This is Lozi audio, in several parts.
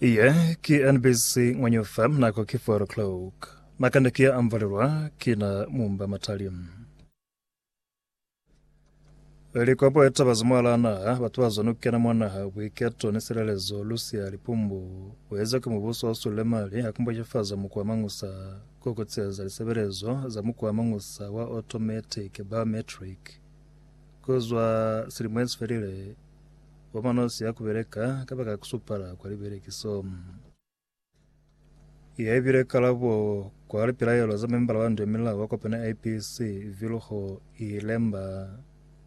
Iye ki NBC Ngwanyufa, nako ki 4 o'clock. Makanda ki ya amvalelwa ki na mumba matali. Likopo eta bazi mwala naha, batu ba zwa nukena mwa naha, buiketo ni silelezo, lusia lipumbu, bueza ki mubuso wa sulile mali, akumbojefaza mukwa mangusa, kukutseza lisebelezo za mukwa mangusa wa automatic, biometric, kuzwa silimo esifelile Bomanosi ya kubeleka kabaka kusupala kwa libelekiso. Iya ibile kalabo kwa lipilaelo za membala wa ndwemilao wa kopana IPC Vilho Ilemba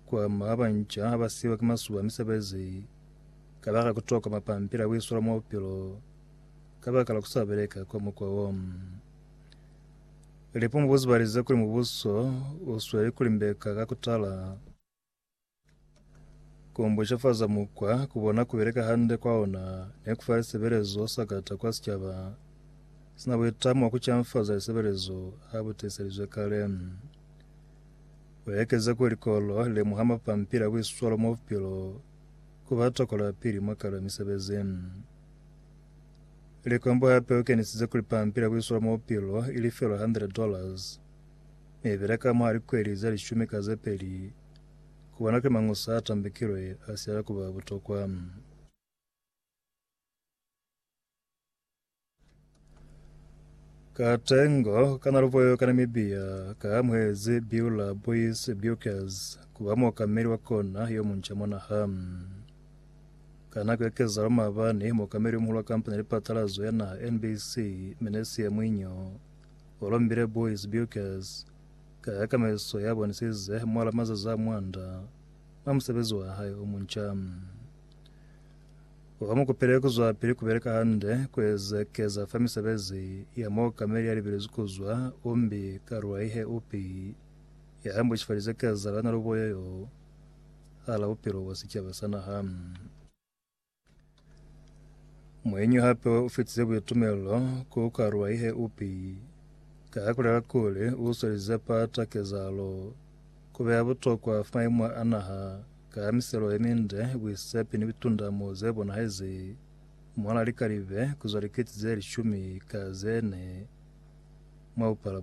kwa ma banca abasiwa ki masuba misebezi kabaka kutoka mapampili abuisola mwa bupilo kabaka la kusabeleka kwa mukwa wo. Lipo mubuzibalize kuli mubuso usweli kulimbeka kakutala Ku mbushefaza mukwa ku bona ku beleka hande kwa ona ne ku fa lisebelezo sakata kwa sicaba si na buitamo bwa ku canfaza lisebelezo ha bu tiiselizwe kale. U ekeze kuli likolo li lemuha mapampili a buiswalo mwa bupilo ku ba tokola pili mwa kala misebezi. Likombo hape u kenisize kuli pampili ya buiswalo mwa bupilo i lifelwa 100 dollars. Ne bela ka mwa likweli ze lishumi ka ze peli ku bona kuli mañi osa a tambekilwe a si ala ku ba butokwa. Ka tengo kana luboyo ka Namibia ka amuhezi Beulah Boys Bukers ku ba muokameli wa kona yo munca mwa naha. Ka nako ya kezalo maabani, muokameli yo muhulu wa kampani ya lipatalazo ya naha NBC, Menesia Mwinyo, Columbia Boys Bukers ka yakameliso ya bonisize mwala mazazi a mwanda mwa musebezi wa hae o munca. Ba mu kopile ku zwapili ku beleka hande ku ezekeza fa misebezi ya muokameli ya libelezwi ku zwa Umbi Karwaihe Upi ya ambushifalize kezalo ya naluboyo yo hala bupilo bwa sicaba sa naha. Muenyi hape u fetize boitumelelo ku karuwa ihe upi ka kulela kuli u swelize pata kezahalo ku beya butokwa maimo a naha ka miselo ye minde, buisepi ni bitundamo ze bonahezi mwa la likalibe ku zwa likete ze lishumi ka ze ne mwa bupala bona.